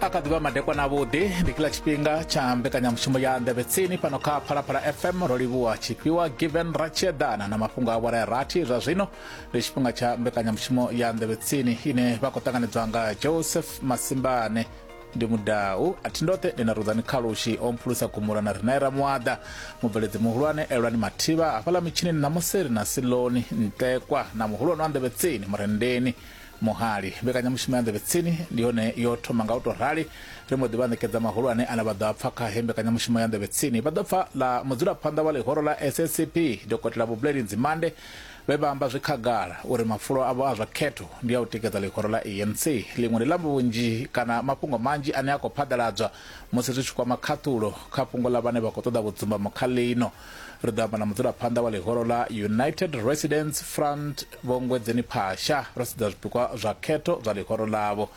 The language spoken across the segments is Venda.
a kha ḓivha madekwana avhuḓi ndi kila tshifhinga tsha mbekanyamushumo ya nḓevhe tsini fhano kha phalaphala fm ro livhuwa tshifhiwa given ratshieḓana na mafhungo a vhora rathi zwa zwino ndi tshifhinga tsha mbekanyamushumo ya nḓevhe tsini ine vha khou ṱanganedzwa nga joseph masimbane ndi mudau a thi ndoṱhe ndi na rudzani khalushi o mphulusa gumula na rinaera muaḓa mubveledzi muhulwane elwani mathivha hafhaḽa mitshini ṋamusi ri na siloni ntekwa na muhulwane wa nḓevhe tsini murendeni Muhali. Mbekanyamushumo ya Nḓevhe Tsini ndi yone yo thoma nga u tou rali. Ri mbo ḓi vha ṋekedza mahulwane ane vha ḓo a pfa kha heyi mbekanyamushumo ya Nḓevhe Tsini. Vha ḓo pfa ḽa mudzulaphanḓa wa ḽihoro ḽa SACP, Dokotela Vho Buleleni Nzimande, vhe vha amba zwi khagala uri mafulo avho a zwa khetho ndi a u tikedza ḽihoro ḽa ANC. Ḽiṅwe ndi ḽa vhunzhi kana mafhungo manzhi ane a khou phaḓaladzwa musi zwi tshi kwama khaṱhulo kha fhungo ḽa vhane vha khou ṱoḓa vhudzumbamo kha ḽino. Ri ḓo amba na mudzulaphanḓa wa ḽihoro ḽa United Residents Front Vho Ngwedzeni Phasha ro sedza zwipikwa zwa khetho zwa ḽihoro ḽavho.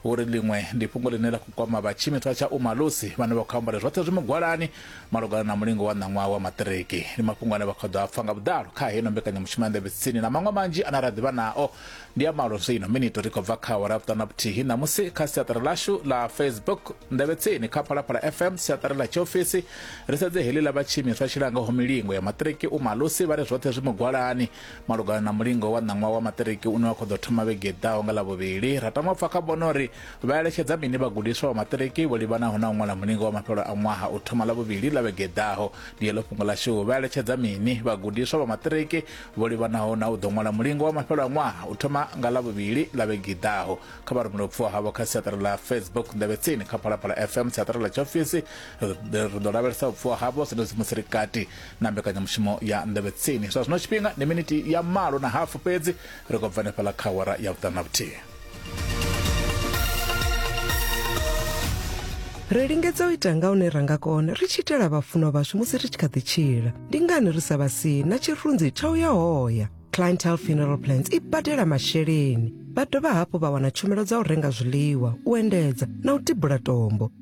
Vho ri ḽiṅwe ndi fhungo ḽine ḽa khou kwama vha tshiimiswa tsha Umalusi vhane vha khou amba uri zwoṱhe zwi mugwalani malugana na mulingo wa ṋaṅwaha wa maṱiriki. Ndi mafhungo ane vha khou ḓo a pfa nga vhuḓalo kha heino mbekanyamushumo ya Nḓevhe Tsini na maṅwe manzhi ane ra ḓivha nao ndi ya malo zwino minito ri khou bva kha awara vhuṱanu na vhuthihi ṋamusi kha siaṱari lashu la facebook ndevhe tsini kha phalaphala fm siaṱari ḽa tshiofisi ri sedze heḽi ḽa vhatshiimiswa tshilangaho milingo ya maṱiriki u malusi vha ri zwoṱhe zwi mugwalani malugana na mulingo wa ṋaṅwaha wa maṱiriki une wa khou ḓo thoma vhege ḓaho nga ḽavhuvhili ra tama pfa kha vhono uri vha eletshedza mini vhagudiswa vha maṱiriki vho livhanaho na u ṅwala mulingo wa mafhelo a ṅwaha u thoma ḽavhuvhili ḽa vhege ḓaho ndi heḽo fhungo lashu vha eletshedza mini vhagudiswa vha maṱiriki vho livhanaho na u ḓo ṅwala mulingo wa mafhelo a ṅwaha u thoma nga ḽavhuvhili ḽa vhege i ḓaho kha vha rumele vhupfuwa havho kha siaṱari ḽa facebook nḓevhetsini kha phalaphala fm siaṱari ḽa tshiofisi ri ḓo lavhelesa vhupfuwa havho zwenezwi musi ri kati na mbekanyamushumo ya nḓevhetsini zwa zwino tshifhinga ndi minithi ya malo na hafu fhedzi ri khou bva hanefhaḽa kha awara ya vhuṱanu na vhuthihi ri lingedza u ita nga hune ra nga kona ri tshi itela vhafunwa vhashu musi ri tshi kha ḓi tshila ndi ngani ri sa vha sii na tshirunzi tsha u ya hoya clientel funeral plans i badela masheleni vha dovha hafhu vha wana tshumelo dza u renga zwiḽiwa u endedza na u tibula tombo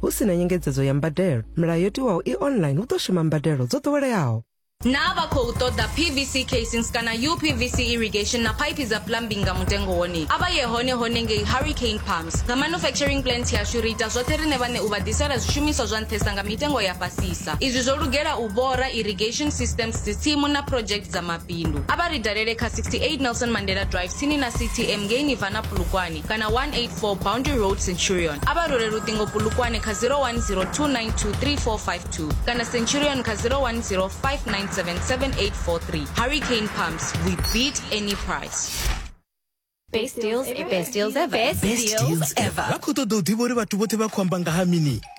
Hu si na nyengedzedzo ya mbadelo, milayo yo tiwaho i online hu ḓo shuma mbadelo dzo ḓoweleaho. Naa vha khou ṱoḓa PVC casings kana UPVC irrigation na phaiphi dza plumbing nga mutengo wone? A vha ye hone hone ngei Hurricane Pumps. Nga manufacturing plant yashu ri ita zwoṱhe riṋe vhaṋe u vha ḓisela zwishumiswa zwa nṱhesa nga mitengo ya fhasisa. Izwi zwo lugela u bora, irrigation systems, dzitsimu na project dza mabindu. A vha ri dalele kha 68 Nelson Mandela Drive tsini na CTM ngei Nirvana Polokwane. kana 184 Boundary Road Centurion a vha role luṱingo pulukwane kha 0102923452 kana Centurion kha 0105977843 Hurricane Pumps we beat any price Best deals ever. Best deals ever. Best deals ever. vha khou ṱoḓa u ḓivha uri vhathu vhoṱhe vha khou amba nga ha mini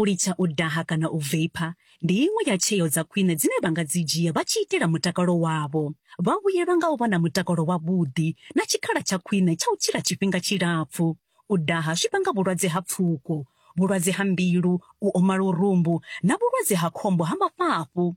U litsha u daha kana u veipha ndi iṅwe ya tsheo dza khwine dzine vha nga dzi dzhia vha tshi itela mutakalo wavho. Vha vhuyelwa nga u vha na mutakalo wavhuḓi na tshikhala tsha khwine tsha u tshila tshifhinga tshilapfu. U daha zwi vhanga vhulwadze ha pfuko, vhulwadze ha mbilu, u oma lurumbu na vhulwadze ha khombo ha mafhafhu.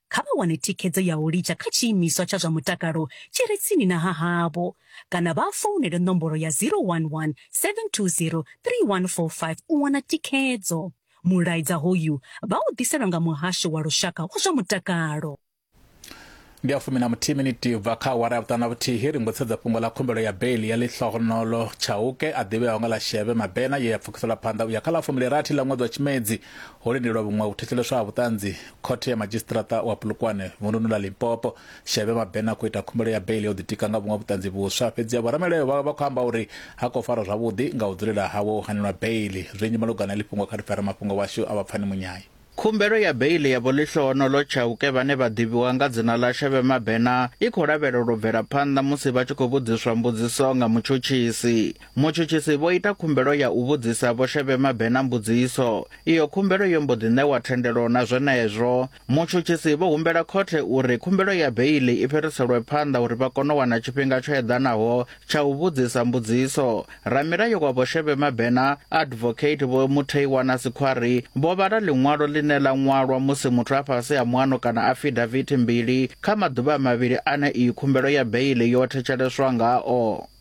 kha vha wane thikhedzo ya u litsha kha tshiimiswa tsha zwa mutakalo tshi re tsini na ha havho kana vha founele nomboro ya 011 720 3145 u wana thikhedzo. Mulaedza hoyu vha u ḓiselwa nga Muhasho wa Lushaka wa zwa Mutakalo. ndi a fumi na muthihi miniti bva kha awara ya vhuṱanu na vhuthihi ri mbo tshedza fhungo ḽa khumbelo ya beili ya ḽihlohonolo tshauke a ḓivheaho nga ḽa sheve mabena ye ya pfukiselwa phanḓa u ya kha ḽa fumbilirathi ḽa ṅwedzi wa tshimedzi ho lindelwa vhuṅwe u thetsheleswa ha vhuṱanzi Khothe ya Madzhisiṱiraṱa wa Polokwane vunḓuni ḽa Limpopo, Shebe Mabena khou ita khumbelo ya beiḽi o ḓitika nga vhuṅwe vhuṱanzi vhuswa. Fhedzi vho ramulayo vhawe vha khou amba uri ha khou farwa zwavhuḓi nga u dzulela hawe u hanelwa beiḽi. Zwinzhi malugana na heḽi fhungo kha ri pfe ramafhungo washu a vha Pfani Munyayi. Khumbelo ya beiḽi ya Vho Lihlohonolo Chauke vhane vha ḓivhiwa nga dzina ḽa Shebe Mabena i khou lavhelelwa u bvela phanḓa musi vha tshi khou vhudziswa mbudziso nga mutshutshisi. Mutshutshisi vho ita khumbelo ya u vhudzisa Vho Shebe Mabena mbudziso. Iyo khumbelo yo mbo ḓi ṋewa thendelo na zwenezwo. Mutshutshisi vho humbela khothe uri khumbelo ya beiḽi i fhiriselwe phanḓa uri vha kone u wana tshifhinga tsho eḓanaho tsha u vhudzisa mbudziso. Ramilayo wa Vho Shebe Mabena, Advocate Vho Mutheiwana Sikhwari, vho vhala ḽiṅwalo ḽine ḽa ṅwalwa musi muthu a fhasi ha muano kana afidavithi mbili kha maḓuvha mavhili ane iyi khumbelo ya beiḽi yo thetsheleswa ngao.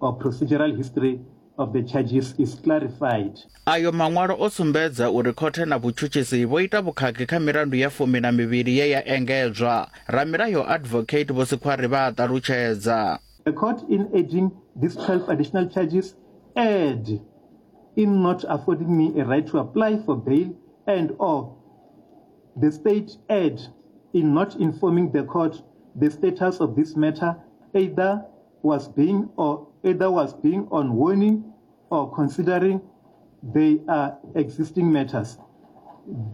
or procedural history of the charges is clarified. Ayo maṅwalo o sumbedza uri khothe na vhutshutshisi vho ita vhukhakhi kha milandu ya fumi na mivhili ye ya engedzwa. Ramilayo Advocate Vho Sikhwari vha a ṱalutshedza. The court in adding these 12 additional charges erred in not affording me a right to apply for bail and or the state erred in not informing the court the status of this matter either was being or either was being on warning or considering they are existing matters.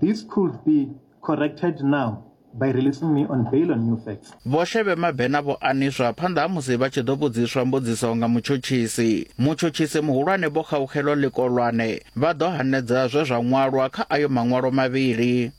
This could be corrected now by releasing me on bail on new facts. vho shebe mabena vho aniswa phanḓa ha musi vha tshi ḓo vhudziswa mbudziso nga mutshutshisi mutshutshisi muhulwane vho khaukhelwa ḽikolwane vha ḓo hanedza zwe zwa ṅwalwa kha ayo maṅwalo mavhili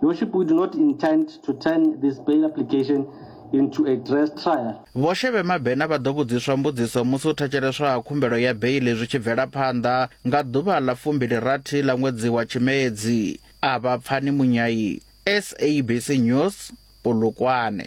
Your worship, we do not intend to turn this bail application into a dress trial. Vho Shebe Mabena vha ḓo vhudziswa mbudziso musi u thetsheleswa ha khumbelo ya beili zwi tshi bvela phanḓa nga ḓuvha ḽa fumbili rathi ḽa ṅwedzi wa Tshimedzi. A vha pfani Munyai, SABC News, Polokwane.